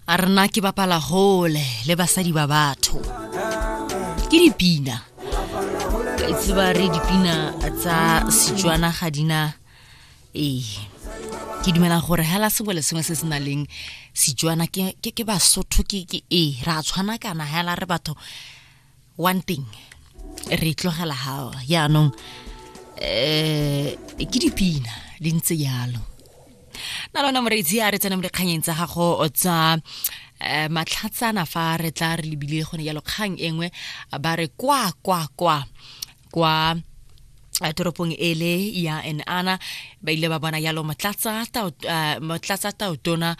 a rena ke bapala hole le basadi ba batho ke dipina ka itse ba re dipina tsa setswana ga dina ee ke dumela gore hela sengwe le sengwe se se na leng setswana ke basotho ke ee ra tshwana kana hela re batho one thing re tlogela gago yaanong eh ke dipina di ntse yalo na lona moreitsi a re tsena mo dikganyeng tsa gago tsa eh, matlhatsana fa re tla re lebile gone yalo kgang engwe ba re kwa kwa kwa kwa toropong ele ya enana ba ile ba bona yalo motlatsa taotona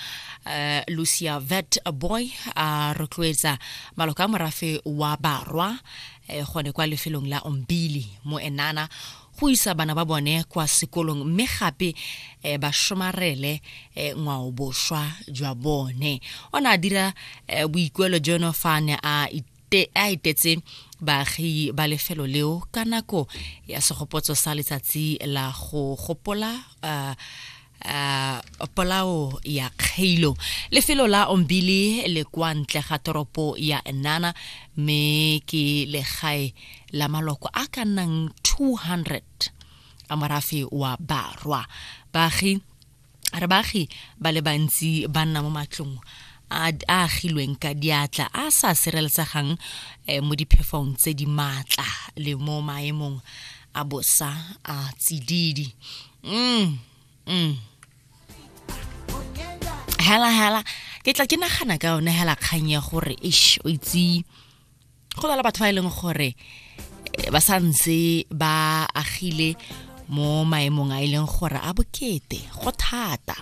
lucia vet boy a rotloetsa maloka a morafe wa barwa eh, gone kwa lefelong la ombili mo enana go isa bana ba bone kwa sekolong mme gape eh, ba somarele eh, ngwao boswa jwa bone o ne a dira eh, boikuelo jono fa ne a te a etetse baagi ba lefelo leo ka nako ya segopotso sa letsatsi la go gopola uh, uh, polao ya kgeilo lefelo la ombili le kwa ntle ga toropo ya nana mme ke legae la maloko a ka nnang 200 a morafe wa barwa baagi re baagi ba le bantsi ba nna mo matlong a agilweng ka diatla a sa sireletsegang eh, mo diphefong tse di maatla le mo maemong a bosa a tsididi mm, mm. hela hela ke tla ke nagana ka yone hela kgang ya gore ish o itse go na le batho ba e leng gore eh, ba sa ntse ba agile mo maemong a e leng gore a bokete go thata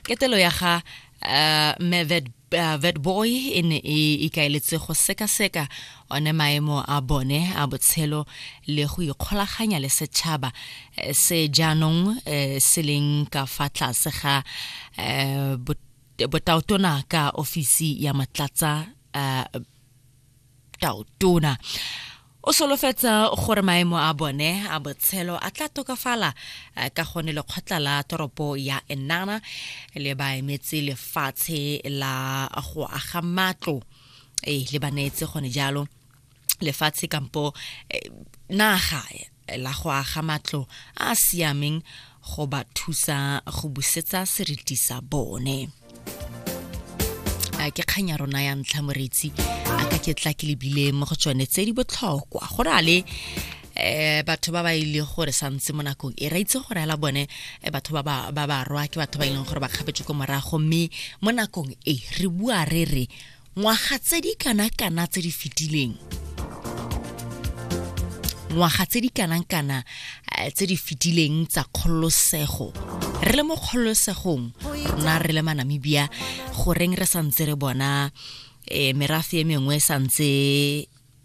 ketelo ya ga uh, eh, Mevet uh, eh, Vetboy e ne e ikaeletse go sekaseka one maemo a bone a botshelo le go ikgolaganya le setšhaba eh, se jaanong eh, se leng ka fa tlase ga eh, botaotona ka ofisi ya matlatsa taotona o solofetsa gore maemo a bone a botshelo a tla tokafala eh, ka gone lekgotla la toropo ya enana le baemetse lefatshe la go aga matlo ee le ba neetse gone jalo lefatshe kampo eh, naga eh, la go aga matlo a a siameng go ba thusa go busetsa seriti sa bone a ke kgang ya rona ya ntlha moretsi a ka ke tla ke lebile mo go tsone tse di botlhokwa go na le eh batho ba ba ile gore santse mo nakong e ra itse gore ala bone eh, batho ba ba ba ba rwa ke batho ba ileng e gore ba kgapetse ko morago mme mo nakong e re bua re re ngwaga tse di kana kana tse di fetileng ngwaga tse di kanang kana eh, tse di fetileng tsa kgololosego re le mo kgololosegong na re le manamibia goreng re santse re bona eh, merafe e mengwe santse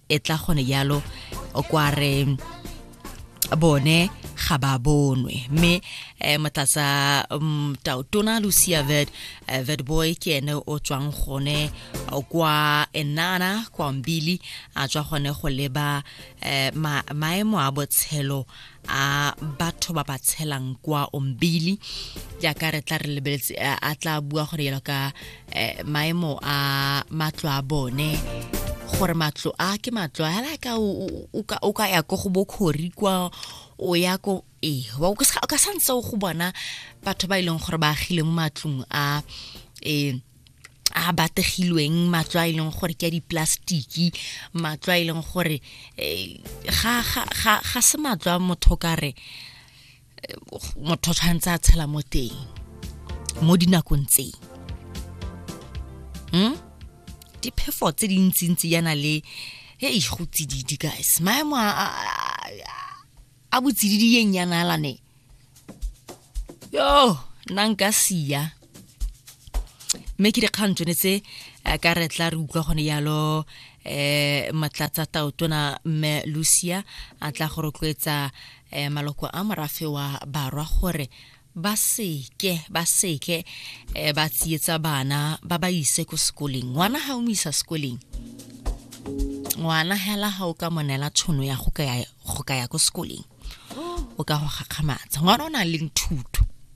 e tla gone jalo kwa re bone ga ba bonwe mme um motlatsa mm, tautona lucia ved eh, vedboy ke ene o tswang gone kwa enana kwa mbili a tswa gone go leba um maemo a botshelo a batho ba ba tshelang kwa ombili jaaka re tla re lebeletse a tla bua gore yalo ka eh, maemo a matlo a bone gore matlo a ke matlo a la ka o ka ya ko go bokhori kwa o ya ko e wa o ka santse o go bona batho ba e leng gore ba agile mo matlong a eh a bategilweng matlo a e leng gore ke a diplastiki matlo a e leng gore eh, ga se matlo a motho ka re eh, motho tshwanetse a tshela mo teng mo dinakong tseng hmm? diphefo tse dintsintsi yana le e go tsididi guys maemo a botsididi ye nyanalane yo nna nka sia mme ke dikgang tsone tse eh, ka re tla re utlwa gone yalo eh matlatsa taotona mme lucia a tla go rotloetsa eh, maloko a morafe wa barwa gore ba seke ba seke eh, ba tsietsa bana ba ba ise ko sekoleng ngwana ga o mo isa sekoleng ngwana hela ga o ka monela tshono ya go ka ya ko sekoleng o ka go gakgamatsa ngwana o na leng thuto